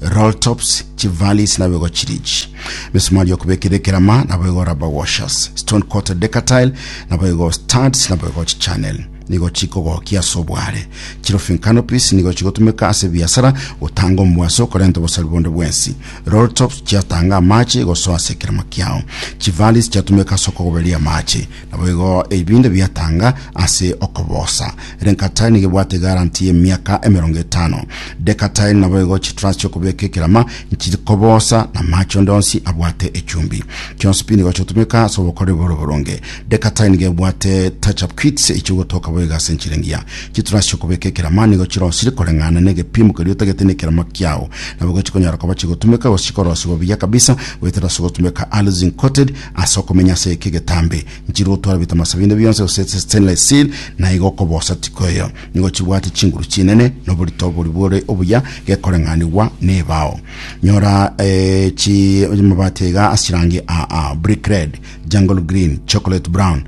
roll tops chivalis nabo igo chiri echi misumari yokobekera ekerama nabo igo rubber washers stone coated decatile nabo igo studs nabo igo chichannel nigo chikogokia ase obware chirofing canopies nigo chigotumeka ase biasara gotanga omwaso korenta obosari bonde bwensi roll tops chiatanga amache gosoa ase ekerama kiao chivalis chiatumeka ase okogoberia amache Naboigo ebinto biatanga ase okobosa. Renkatail nigo ebwate guarantee y'emiaka emerongo etano. Decatail naboigo chitruss chi'okobeka ekerama nchiri kobosa na amache onde onsi abwate echumbi. Chionsi pi nigo chiotumeka ase obokoreri bore oboronge. Decatail nigo ebwate touch-up kits echi'ogotoka boigo ase enchera engiya. Chitruss chi'okobeka ekerama nigo chirosire koreng'ana n'egepimo keria otagete nekerama kiao. Naboigo chikonyara koba chigotumeka gose chikorosiwa buya kabisa goetera ase ogotumeka allicin-coated Ase okomenya ase eke getambe, nchire otware ebitamasa binde bionsi gose ase stainless steel, na igo okobosa tiko eyo. Nigo chibwate chinguru chinene, na oborito oboria bore obuya, gekoreng'anigwa nebao. Nyora eh, chi amabati aiga ase chirangi aa, brick red, jungle green, chocolate brown,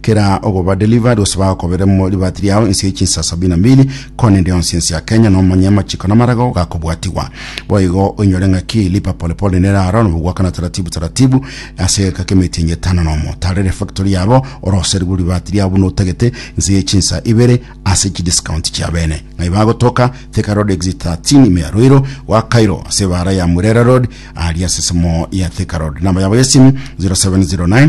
Kera ogoba delivered gose bagokobere mo libati riao inse ye chinsa sabini na mbili kona ende yonsi ense ya Kenya nomanye amachiko namarago gakobwatiwa boigo oinyore ng'aki lipa pole pole nera aro nobogwakana taratibu taratibu ase egeka kemeti enye etano nomo tarere factory yabo oroserigwe libati riao buna otagete inse ye chinsa ibere ase chi discount chia bene ng'ai bagotoka Thika Road exit 13 ime ya Ruiro gwa Cairo ase ebara ya Murera Road aria ase esemo ya Thika Road namba yabo yesimu 0709